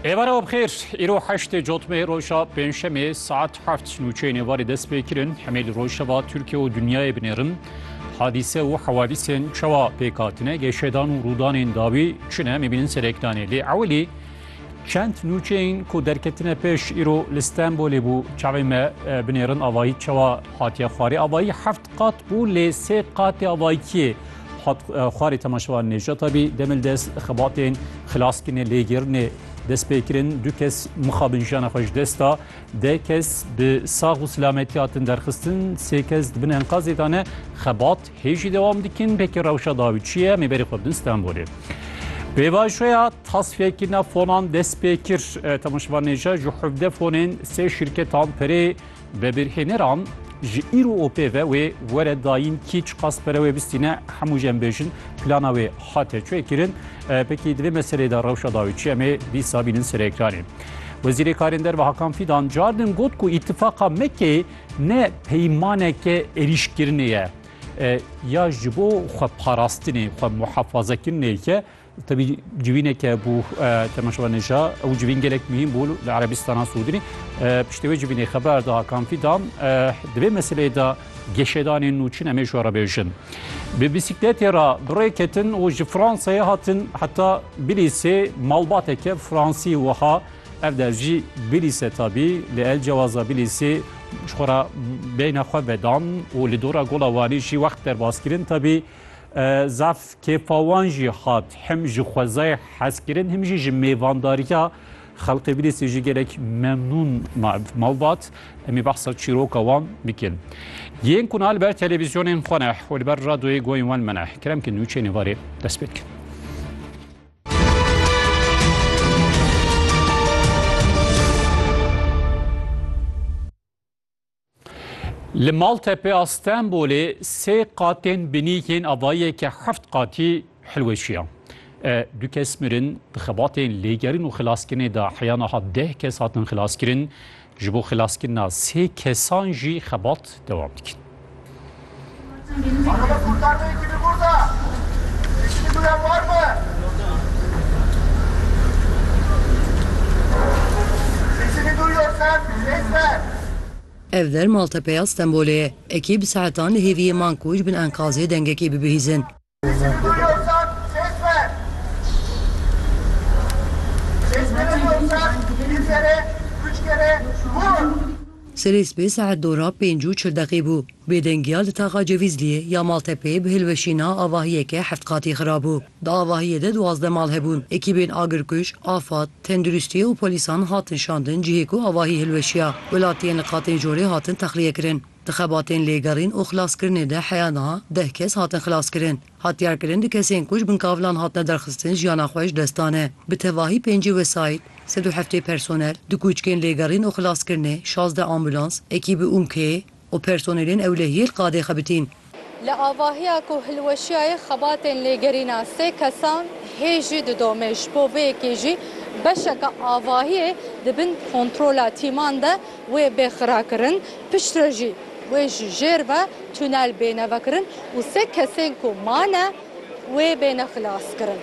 Êvara bi xêr, îro heştê cotmê roja pêncşemê saet heft nûçeyên êvarê dest pê kirin. Hemê li rojeva Tirkiye û dinyayê binêrin. Hadîse û hewadîsên çawa pêk hatine, geşedan û rûdanên dawî çi ne em ê bînin serê Ekdanê. Lê ewilî çend nûçeyên ku derketine pêş îro li Stenbolê bû çavên me binêrin. Avayî çawa hatiye xwarê? Avayî heft qat bû lê sê qatê avayîkiyê Hat xwarê temaşevan Nêjat abî demil dest xebatên xilaskirinê lêgirinê destpêkirin du kes mixabin jiyana xwe ji dest da de kes bi sax û silametî hatin derxistin sê kes dibin enkazê de ne xebat hêjî dewam dikin pekî rewşa dawî çi ye mêberê xwe bidin Stenbolê. Pêvajoya tasfiyekirina fonan destpêkir temaşevan Nêjat ji hevde fonên sê şirketan perê Vebirhêneran ji îro û pê ve wê were dayîn kî çiqas pere wê bistîne hemû jî em bêjin plana wê hate çêkirin. Pekî di vê meselê de rewşa dawî çi em ê dîsa bînin serekranê. Wezîrê Karên Derve Hakan Fîdan cardin got ku îtifaqa Mekê ne peymaneke êrîşkirinê ye ya ji bo xwe parastinê xwe muhefazekirinê ye Tebî civîneke bû temaşevanêja ew civîn gelek muhîm bû li Erebîstana Sûdî. Piştê wê civînê xeber da Hakan Fîdan di vê meseleyê de geşedanên nû çin em ê ji we re bêjin. Bi bîsîkletê re bi rê ketin û ji Fransayê hatin heta Bilîsê malbateke Fransî wiha ev der jî Bilîse tabî li el cewaza Bilîsê ji xwe re beyna xwe vedan û li dora Gola Wanî jî wext derbas kirin tabî Zaf kêfa wan jî hat him ji xwezayê hezkirin him jî ji mêvandariya xelqê Bidêsê jî gelek memnûn malbat. Em ê behsa çîroka wan bikin. Yên ku niha li ber televîzyonên xwe ne û li ber radyoyê goyên wan me ne kerem ki nûçeyên êvarê dest pê dikin. Li Maltepe a Stenbolê sê qatên binî yên avayeke heft qatî hilweşiya. Du kes mirin, di xebatên lêgerin û xilaskirinê de heya niha deh kes hatin xilaskirin, ji bo xilaskirina sê kesan jî xebat dewam dikin. Ev der Maltepeya Stenbolê ye. Ekî bi saetan li hêviyê man ku ji bin enkazê dengekî bibihîzin. Serê sibê saet du ra pênc û çil deqî bû. Bêdengiya li taxa Cevîzliyê ya Maltepeyê bi hilweşîna avahiyeke heft qatî xirabû. Di avahiyê de duwazdeh mal hebûn. Ekîbên agirkuj, afad, tenduristî û polîsan hatin şandin cihê ku avahî hilweşiya. Welatiyên li qatên jorê hatin texliyekirin. Di xebatên lêgerîn û xilaskirinê de heya niha deh kes hatin xilaskirin. Hatdiyarkirin di kesên ku ji bin kavilan hatine derxistin jiyana xwe ji dest dane. Bi tevahî pêncî wesayît, sed û heftê personel, du kûçkên lêgerîn û xilaskirinê, şazdeh ambûlans, ekîbî ûmkeyê û personelên ewlehiyê li qadê xebitîn. Li avahiya ku hilweşiyayê xebatên lêgerîna sê kesan hê jî didome, ji bo vê yekê jî beşeke avahiyê di bin kontrola tîman de wê bê xirakirin, piştre jî wê ji jêr ve tunel bê nevekirin û sê kesên ku mane wê bêne xilaskirin.